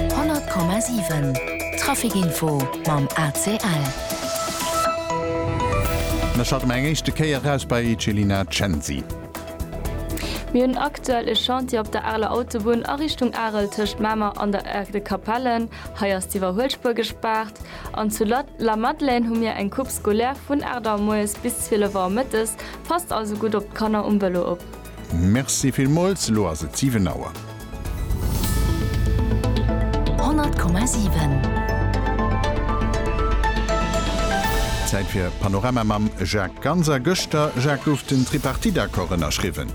100,7 Trafic Info mam ACL. Mir schalte mer eng éischte Kéier eraus bei Celina Censi. Mir hunn aktuell e Chantier op der aler Autobunn a Richtung Arel tëscht Mamer an der Aire de Capellen. Hei ass d'Iwwerhuelspuer gespaart. An zu Lamadelaine hu mir eng Coupe scolaire vun 8 Auer moies bis 12 Auer mëttes. Passt also gutt op d'Kanner um Vëlo op. Merci villmools, elo ass et 7 Auer. 100,7. Zäit fir Panorama mam Jacques Ganser. Gëschter, Jacques, gouf den Tripartite-Accord ënnerschriwwen.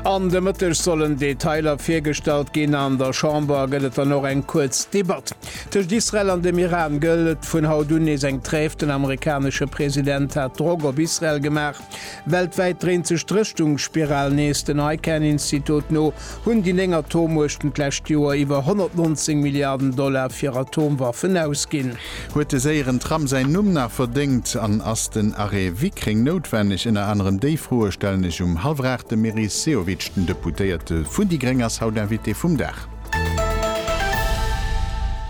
An de Mëtteg sollen Detailer virgestallt ginn. An der Chamber gëtt et dann och eng kuerz Debatt. Tëscht Israel an dem Iran gëllt vun haut un nees eng Trêve. Den amerikanesche President hat Drock op Israel gemaach, Weltwäit dréint sech d'Rëschtungsspiral nees. Den ICAN-Institut no hunn déi néng Atommuechten d'lescht Joer iwwer 119 Milliarden Dollar fir Atomwaffen ausginn. Huet de séieren Tram säin Numm nach verdéngt? An ass den Arrêt Wickreng noutwenneg? Ënner anerem déi Froe stellen ech um Halvrer. De Meris Sehovic, den Deputéierte vun déi gréng, ass haut Invité vum Dag.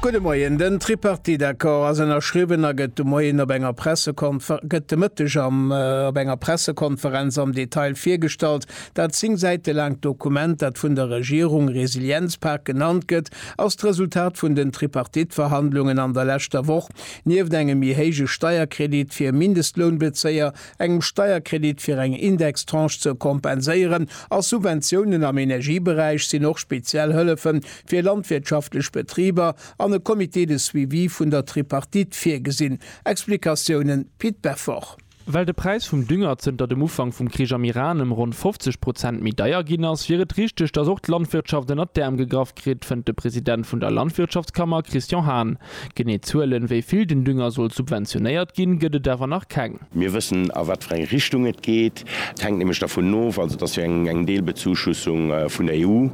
Gudde Moien. Den Tripartite-Accord ass ënnerschriwwen a gëtt de Moien op enger Pressekonfer gëtt de Mëtteg am op enger Pressekonferenz am Detail virgestallt. Dat 10 Säite laangt Dokument, dat vun der Regierung Resilienzpak genannt gëtt, ass d'Resultat vun den Tripartite-Verhandlungen an der leschter Woch. Nieft engem méi héije Steierkredit fir Mindestlounbezéier, engem Steierkredit fir eng Indextranche ze kompenséieren a Subventiounen am Energieberäich sinn och speziell Hëllefe fir landwirtschaftlech Betriber an e Comité de suivi vun der Tripartite virgesinn, Explikatiounen, Pit Beffort. Well de Präis vum Dünger zënter dem Ufank vum Krich am Iran ëm ronn 50 Prozent méi deier ginn ass, wier et richteg, datt och d'Landwirtschaft ënnert d'Äerm gegraff kritt, fënnt de President vun der Landwirtschaftskammer Christian Hahn. Genee Zuelen, wéi vill den Dünger soll subventionéiert ginn, gëtt et awer nach keng. Mir wëssen, a wat fir eng Richtung et geet. Et hänkt nämlech dervun of, also et ass jo eng Deelbezuschussung vun der EU,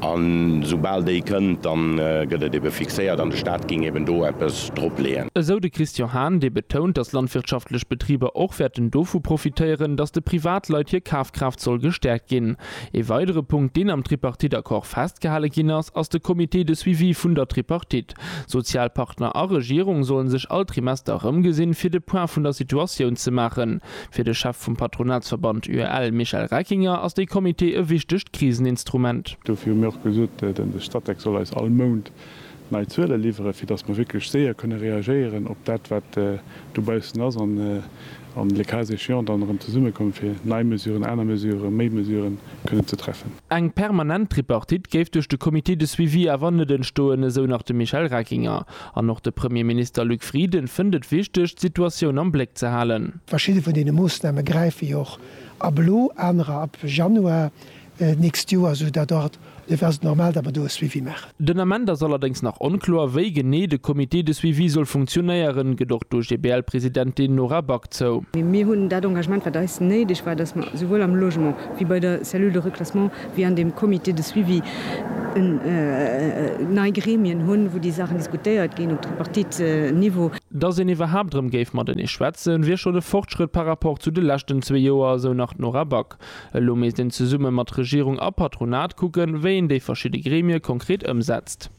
a soubal déi kënnt, da gëtt et ebe fixéiert an de Stat géing eben do eppes dropleeën. Esou de Christian Hahn, dee betount, datt landwirtschaftlech Betriber och wäerten dovu profitéieren, datt de Privatleit hir Kafkraaft soll gestäerkt ginn. Ee weidere Punkt, deen am Tripartite-Accord festgehale ginn ass, ass de Comité de suivi vun der Tripartite. Sozialpartner a Regierung sollen sech all Trimester erëmgesinn, fir de Point vun der Situatioun ze maachen. Fir de Chef vum Patronatsverband UEL, Michel Reckinger, ass dee Comité e wichtegt Kriseninstrument. Dofir hu mir och gesot, de Statec soll eis all Mount nei Zuele liwweren, fir datt mer wierklech séier kënne reagéieren op dat, wat dobaussen ass, an an le cas échéant dann erëm zesummekommen, fir nei Mesuren, aner Mesuren, méi Mesuren kënnen ze treffen. Eng permanent Tripartite géif duerch de Comité de suivi awer net entstoen, esou nach de Michel Reckinger. An och de Premierminister Luc Frieden fënnt et wichteg, d'Situatioun am Bléck ze halen. Verschidde vun deene Moossname gräife jo och ab elo, anerer ab Januar. nächst Joer, sou dat Art de veste normal, datt mer do e Suivi maachen. Den Ament ass allerdéngs nach onkloer, wéi genee de Comité de suivi soll funktionéieren, gëtt och d'OGBL-Presidentin Nora Back zou. Mir hunn dat Engagement, wat eis néideg war, datt mer souwuel am Logement wéi bei der Cellule de reclassement wéi an deem Comité de suivi nei Gremien hunn, wou déi Saachen diskutéiert ginn op Tripartite-Niveau. Datt een iwwerhaapt erëm géif matenee schwätzen, wier schonn e Fortschrëtt par rapport zu de leschten zwee Joer, sou nach d'Nora Back. Elo misst een zesumme mat Regierung a Patronat kucken, wéi een déi verschidde Gremie konkret ëmsetzt.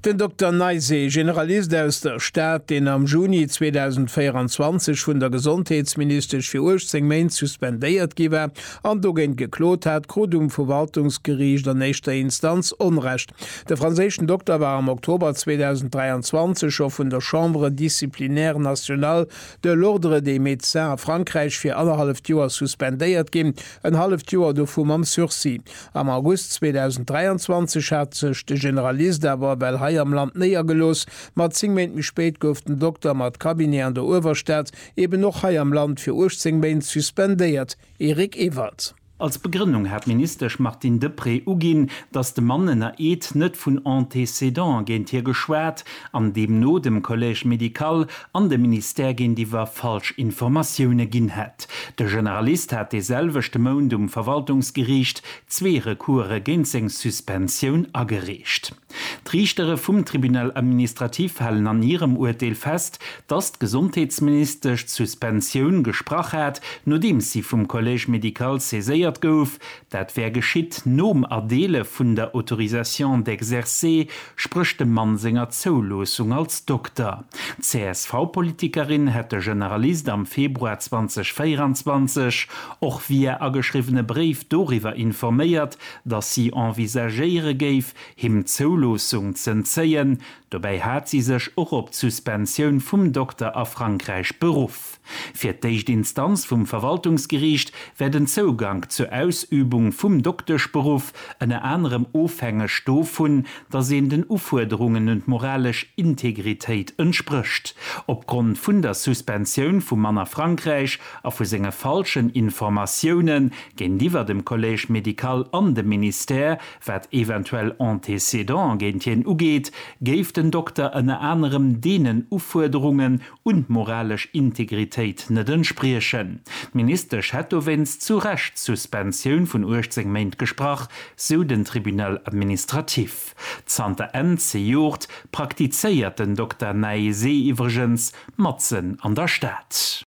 Den Dokter Neis, ee Generalist aus der Stad, deen am Juni 2024 vun der Gesondheetsministesch fir 18 Méint suspendéiert gi war an dogéint geklot hat, krut um Verwaltungsgeriicht an éischter Instanz Onrecht. De franséischen Dokter war am Oktober 2023 scho vun der Chambre disciplinaire nationale De L'Ordre des médecins a Frankräich wier annerhalleft Joer suspendéiert ginn, en halleft Joer dovu mam Sursis. Am August 2023 hat sech de Generalist awer ewell hei am Land néiergelooss, ma zéng Méint méi spéit gouf den Dokter mat Cabinet an der Uewerstad eben och hei am Land fir 18 Méint suspendéiert, Eric Ewald. Als Begrënnung hat d'Ministesch Martine Deprez uginn, datt de Mann ënner Eed net vun Antécédant géint hie geschwat an deemno dem Collège médical an dem Ministère géintiwwer falsch Informatioune ginn hätt. De Generalist hat dee selwechte Mount um Verwaltungsgeriicht zwee Recourse géint seng Suspensioun agereecht. D'Riichtere vum Tribunal administratif halen an hirem Urteel fest, dass d'Gesondheetsministesch d'Suspensioun gesprach hat, nodeems si vum Collège médical saiséiert gouf. Dat wär geschitt nom Erdeele vun der Autorisation d'exercer, spréch dem Mann senger Zouloossung als Dokter. D'CSV-Politikerin hätt de Generalist am Februar 2024 och via ageschriwwene Bréif doriwwer informéiert, datt si envisagéiere géif, him d'Zouloossung z'entzéien. Dobäi hat si sech och op d'Suspensioun vum Dokter a Frankräich beruff. Fir d'éischt Instanz vum Verwaltungsgeriicht wär den Zougank zur Ausübung vum Dokteschberuff ënner anerem ofhängeg dovun, datt een den Ufuerderungen un d'moralesch Integritéit entsprécht. Opgrond vun der Suspensioun vum Mann a Frankräich a vu senge falschen Informatioune Géintiwwer dem Collège médical an dem Ministère, wat eventuell Antécédant géint hien ugeet, géif den Dokter ënner anerem deenen Ufuerderungen un d'moralesch Integritéit net entspriechen. D'Ministesch hätt dowéinst zu Recht d'Suspensioun vun 18 Méint gesprach, sou den Tribunal administratif. Zanter Enn zejoert praktizéiert den Dokter Naesé iwwregens matzen an der Stad.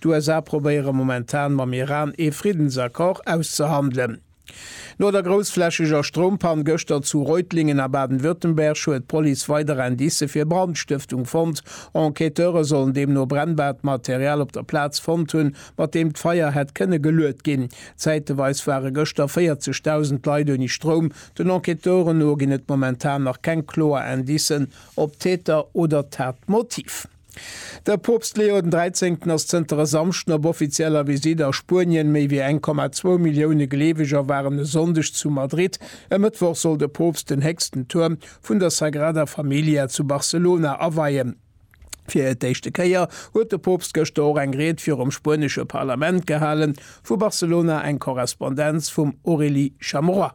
D'USA probéiere momentan mam Iran ee Friddensaccord auszehandelen. No der groussflächeger Stroumpann gëschter zu Reutlingen a Baden-Württemberg huet d'Police weider Indicë fir Brandstëftung fonnt. Enquêteure sollen deemno brennbaart Material op der Plaz fonnt hunn, mat deem d'Feier hätt kënne geluet ginn. Zäiteweis ware gëschter 40.000 Leit ouni Stroum. Den Enquêteuren no ginn et momentan nach keng kloer Indicen op d'Täter oder d'Tatmotiv. De Poopst Leo den 13. ass zënter e Samschden op offizieller Visitt a Spuenien. Méi wéi 1,2 Millioune Gleeweger waren e Sonndeg zu Madrid. E Mëttwoch soll de Poopst den héchsten Tuerm vun der Sagrada Familia zu Barcelona aweien. Fir d'éischte Kéier huet de Poopst gëschter och eng Ried virum spuenesche Parlament gehalen. Vu Barcelona eng Korrespondenz vum Aurélie Chamerois.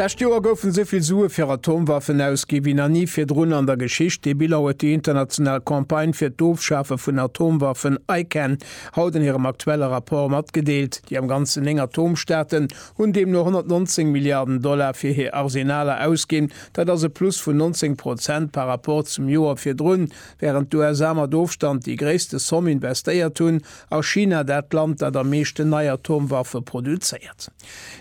D'lescht Joer goufen esou vill Sue fir Atomwaffen ausgi wéi nach ni virdrun an der Geschicht. Dee Bilan huet déi international Campagne fir d'Ofschafe vun Atomwaffen, ICAN, haut an hirem aktuelle Rapport matgedeelt. Déi am Ganzen néng Atomstaaten hunn deemno 119 Milliarden Dollar fir hir Arsenaler ausginn. Dat ass e Plus vun 19 Prozent par Rapport zum Joer virdrun. Wärend d'USA mat Ofstand déi gréisste Somm investéiert hunn, A China, dat Land, dat am meeschten nei Atomwaffe produzéiert.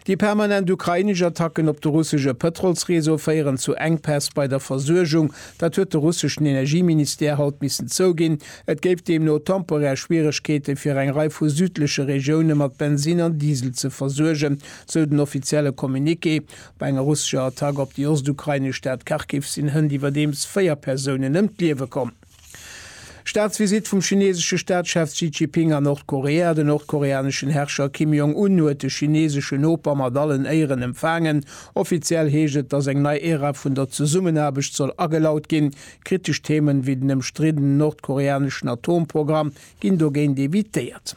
Déi permanent ukrainesch Attacken op de russesche Pëtrolsreseau féieren zu Enkpäss bei der Versuergung. Dat huet de russeschen Energieministère haut missen zouginn. Et géif deemno temporär Schwieregkeete fir eng Rei vu südleche Regioune mat Bensinn an Diesel ze versuergen, sou den offizielle Communiqué. Bei enger russescher Attack op déi ostukrainesch Stad Kharkiv sinn hënt iwwerdeems véier Persounen ëm d'Liewe komm. Staatsvisitt vum chineesesche Staatschef Xi Jiping a Nordkorea Den nordkoreaneschen Herrscher Kim Jong Un huet de chineeseschen Noper mat allen Éieren empfaangen. Offiziell heescht et, datt eng nei Ära vun der Zesummenaarbecht soll agelaut ginn. Kritesch Themen, wéi den ëmstriddenen nordkoreaneschen Atomprogramm, ginn dogéint evitéiert.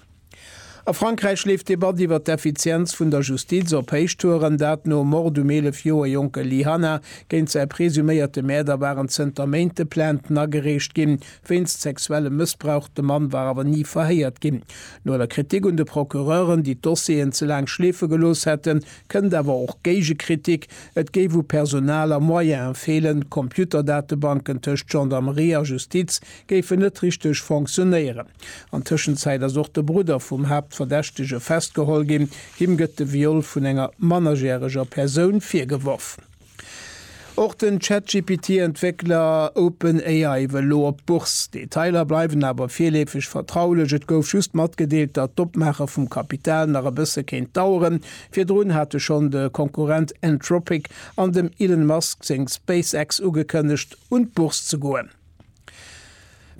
A Frankräich leeft d'Debatt iwwer d'Effizienz vun der Justiz op Héichtouren, dat nom Mord um 11 Joer jonke Lee Hanna. Géint säi presuméierte Mäerder waren zënter Méinte Plainten agereecht ginn. Wéinst sexuellem Mëssbrauch, de Mann war awer ni verhéiert ginn. No der Kritik un de Procureuren, déi d'Dossieren ze laang schleefe gelooss hätten, kënnt awer och Géigekritik, et géif u Personal a Moyene feelen. D'Computerdatebanken tëscht Gendarmerie a Justiz géifen net richteg fonctionéieren. An Tëschenzäit ass och de Brudder vum Haaptverdächtege festgeholl ginn. Him gëtt de Viol vun enger mannerjäreger Persoun virgeworf. Och den ChatGPT-Entwéckler OpenAI wëll elo op d'Bourse. Detailer bleiwen awer virleefeg vertraulech. Et gouf just matgedeelt, datt d'Opmaache vum Kapital nach e bësse kéint daueren. Virdrun hate schonn de Konkurrent Anthropic an dem Elon Musk seng SpaceX ugekënnegt, un d'Bourse ze goen.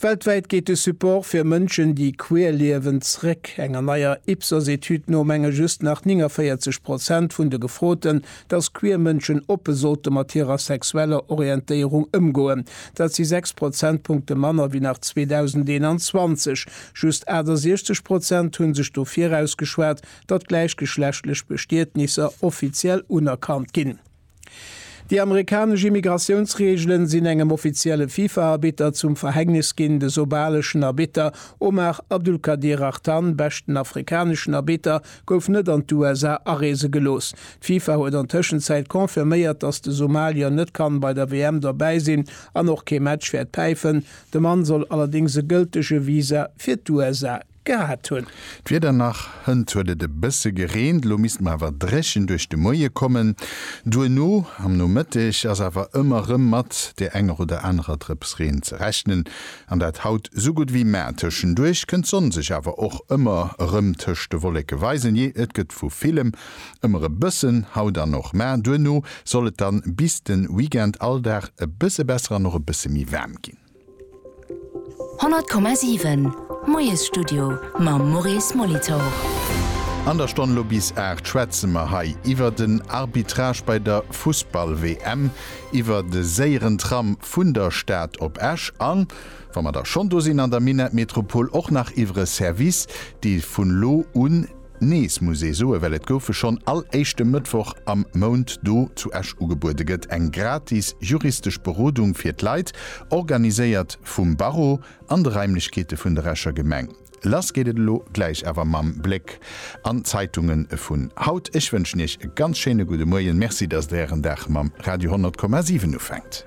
Weltwäit geet de Support fir Mënschen, déi queer liewen, zréck. Enger neier Ipsos-Etüd no menge just nach 49 Prozent vun de Gefroten, datt queer Mënschen oppe sollte mat hirer sexueller Orientéierung ëmgoen. Dat si 6 Prozentpunkte manner wéi nach 2021. Just 68 Prozent hu sech dofir ausgeschwat, datt gläichgeschlechtlech Bestietnisser offiziell unerkannt ginn. Déi amerikanesch Immigratiounsreegelen sinn engem offizielle FIFA-Arbitter zum Verhängnis ginn. De sobaleschen Arbitter Omar Abdulkadir Artan, beschten afrikaneschen Arbitter, gouf net an d'USA areese gelooss. D'FIFA huet an Tëschenzäit confirméiert, datt de Somalier net kann bei der WM dobäi sinn an och kee Match wäert päifen. De Mann soll allerdéngs e gëltege Visa fir d'USA gehat hunn. D'Wieder nach, hënt huet et e bësse gereent, elo misst mer awer dréchen duerch de Moie kommen. Duerno am Nomëtteg ass awer ëmmer erëm mat der enger oder anerer Drëps Reen ze rechnen, an dat haut sou gutt ewéi mar. Tëschenduerch kënnt d'Sonn sech awer och ëmmer erëm tëscht de Wolleke weisen, jee et gëtt vu villem ëmmer e bëssen, haut an och mar. Duerno soll et dann bis de Weekend all Dag e bësse besser an och e bësse méi waarm ginn. 100,7 Moiesstudio mam Maurice Molitor. An der Stonn elo bis 8 schwätze mer hei iwwer den Arbitrage bei der Fussball-WM, iwwer de séieren Tram vun der Stad op Esch a wa mer da schonn do sinn an der Minettmetropol och nach iwwer e Service, dee vun elo un, Nees muss ee soe well et goufe schonn all éischte Mëttwoch am Mount do zu Esch ugebuede gëtt eng gratis juristesch Berodung fir d'Leit, organiséiert vum Barreau an de Raimlechkeete vun der Escher Gemeng. Lass geet et elo gläich awer mam Bléck an d'Zeitunge vun haut. Ech wënschen Iech e ganz schéine gudde Muerjen. Merci datt Der Ären Dag mam Radio 100,7 ufänkt.